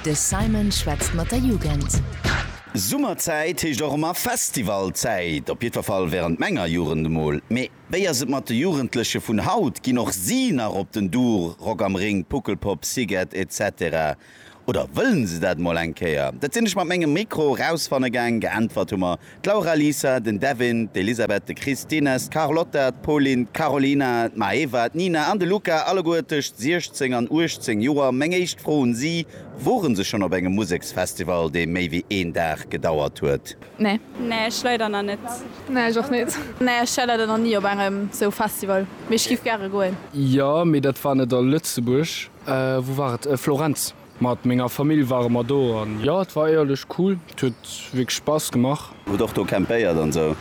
De Simon schwätzt mat der Jugend. Summerzäit heescht och emmer Festivalzäit, op jiddwer Fall während menger Jugend emol. Mee wéi ass et mat de Jugendleche vun haut? Ginn och si nach op den Duur, Rock am Ring, Puckelpop, Szighet etc. Oder wëllen se dat emol eng Kéier? Dat sinn ech mat mengem Mikro erausfanne gaang. Geäntwert hu mer D'Laura, Lisa, den Devin, d'Elisabeth, de Chris, d'Ines, d'Carlotta, d'Pauline, d'Carolina, d'Maeva, d'Nina an de Luca, alleguer tëscht 16 an 18 Joer. Meng éischt Fro un si, Woren se schonn op engem Museksfestival, dee méi wéi een Dag gedauert huet? Nee. Nee, ech leider nach net. Nee, ech och net. Nee, ech war leider nach ni op engem sou Festival, mee ech giff gäre goen. Jo, mee dat war net a Lëtzebuerg. Wou war et? Florenz. Mat menger Famill ware mer do an jo et war éierlech cool, et huet wierklech Spass gemaach. Hutt och do campéiert an sou?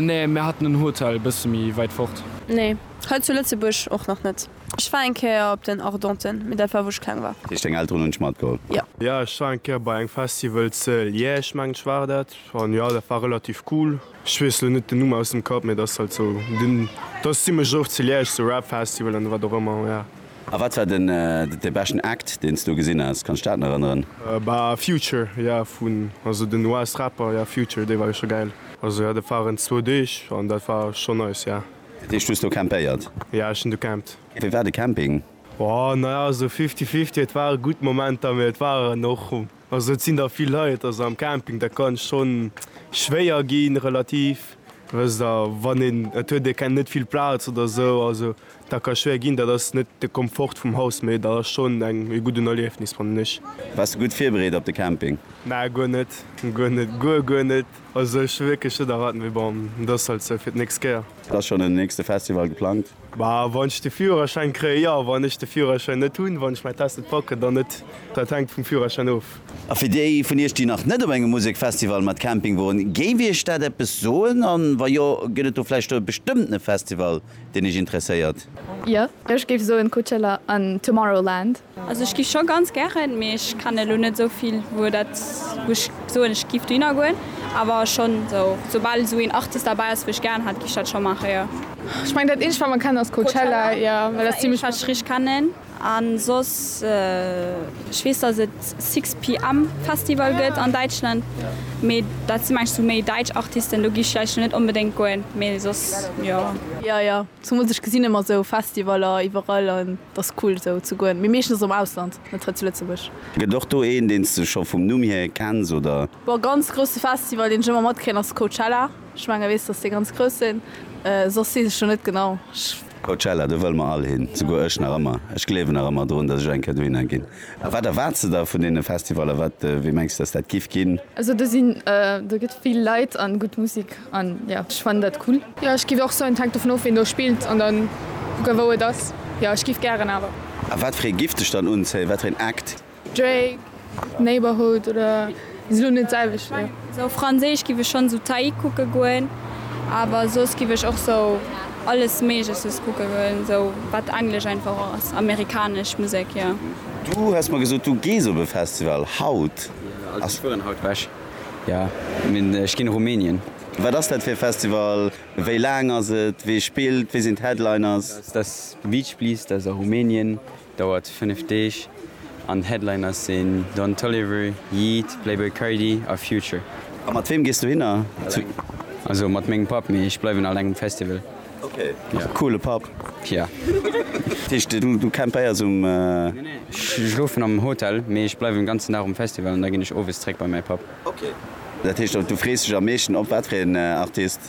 Nee, mir haten en Hotel bësse méi wäit fort. Nee, hei zu Lëtzebuerg och nach net. Ech war eng Kéier op den Ardenten, mee dat war wou ech kleng war. Dat heescht deng Elteren hunn dech matgeholl? Jo. Jo, ech war eng Kéier bei engem Festival ze Liège, mengen ech war dat, an jo dat war relativ cool. Ech wees lo net den Numm aus dem Kapp, mee dass halt sou den dass zimlech oft zu Liège sou Rap Festival an wat och ëmmer ja. A wat war den de beschten Act deen s do gesinn has? Kanns dat nach erënneren? Bah Future ja vun also den US Rapper ja Future dee war jo scho gäil. Also ja dat waren zwou Deeg an dat war scho nice ja. Dat heescht du hues do campéiert? Ja ech hunn do campt. Wéi war de Camping? Boah naja sou fifty fifty, et ware gutt Momenter mee et waren och. Also et sinn der vill Leit, also am Camping dat kann schonn schwéier ginn relativ, wësst der wann een et huet ee kennt net vill Plaz oder esou, also dat ka schwéier ginn, dat ass net de Komfort vum Haus, mee dat ass schonn eng ee gudden Erliefnis fannen ech. Bass de gutt virbereet op de Camping? Na guer net, guer net, guer guer net, also ech hu wierklech net erwaart, mee bon, et ass halt esou fir d'nächst Kéier. Ass schonn en nächste Festival geplangt? Ma wann ech de Führerschäin kréien, jo. Wann ech de Führerschäin net hunn, wann ech mäin Test net packen, dann net. Dat hänkt vum Führerschäin of. A fir déi vun iech, déi nach net op engem Musekfestival mat Camping woren, géif iech dat eppes soen? An wa jo, gëtt et do vläicht e bestëmmtene Festival, deen iech interesséiert? Jo, ech géif soen Coachella an Tomorrowland. Also ech giff scho ganz gären, mee ech kennen elo net esou vill wou dat wou ech soen ech giff dohinner goen, awer schon sou soubal esou een Artist derbäi ass wou ech gären hat giff ech dat schon maachen jo. Ech mengen dat eenzegt wat mer kennen ass Coachella, jo well dat ass zimmlech wat ech richteg kennen an soss ech weess dass et sixpm Festival gëtt an Däitschland mee dat sinn mengen ech sou méi däitsch Artisten do giff ech vläicht elo net onbedéngt goen mee soss jo. Jo jo, zumools ech gesinn emmer sou Festivaller iwwerall an. Et ass cool esou ze goen, mee meeschtens am Ausland, net hei zu Lëtzebuerg. Gëtt och do een deens de scho vum Numm hier kenns oder? Bon, ganz grousse Festival deen ech ëmmer matkréien ass Coachella. Ech mengen weess dass déi ganz grouss sinn, soss weess ech do net genau. Coachella, do wëll mer all hin, souguer ech nach ëmmer. Ech gleewen nach ëmmer drun dass ech eng Kéier dohinner ginn. A wat erwaarts de der vun deene Festivaller? Wat, wéi mengs de, dass dat giff ginn? Also do sinn, do gëtt vill Leit an gutt Musik an jo, ech fannen dat cool. Jo, ech giff och soen, et hänkt dovun of, wien do spillt an dann kucken, wou et ass. Jo, ech giff gären, awer. A wat fir ee giff dech dann unzéien? Wat fir een Act? Drake, Neighbourhood oder Ass elo net selwecht ne. Sou franséisch giff ech schons sou Taille kucken goen, awer soss giff ech och sou alles méigleches kucken goen, sou wat englesch einfach och ass, amerikanesch Musek jo. Du hues mer gesot du gees op e Festival haut. Also ech fueren haut wech, jo mee ech ginn Rumänien. Wat ass dat fir e Festival, wéi laang ass et, wee spillt, wee sinn d'Headliners? Dat ass The Beach Please, dat ass a Rumänien, Dauert 5 Deeg an Headliner sinn Don Toliver, Yeat, Playboi Carti a Future. A mat weem gees du hinner? Also mat mengem Papp, mee ech bleiwen aleng um Festival. Ok, coole Papp. Yeah. Dat heescht du campeier's um. Nee nee, ech schlofen am Hotel, mee ech bleiwen den ganzen Dag um Festival an da ginn ech owes zréck bei mäi Papp. Ok, dat heescht du frees dech am meeschten op wat fir een Artist?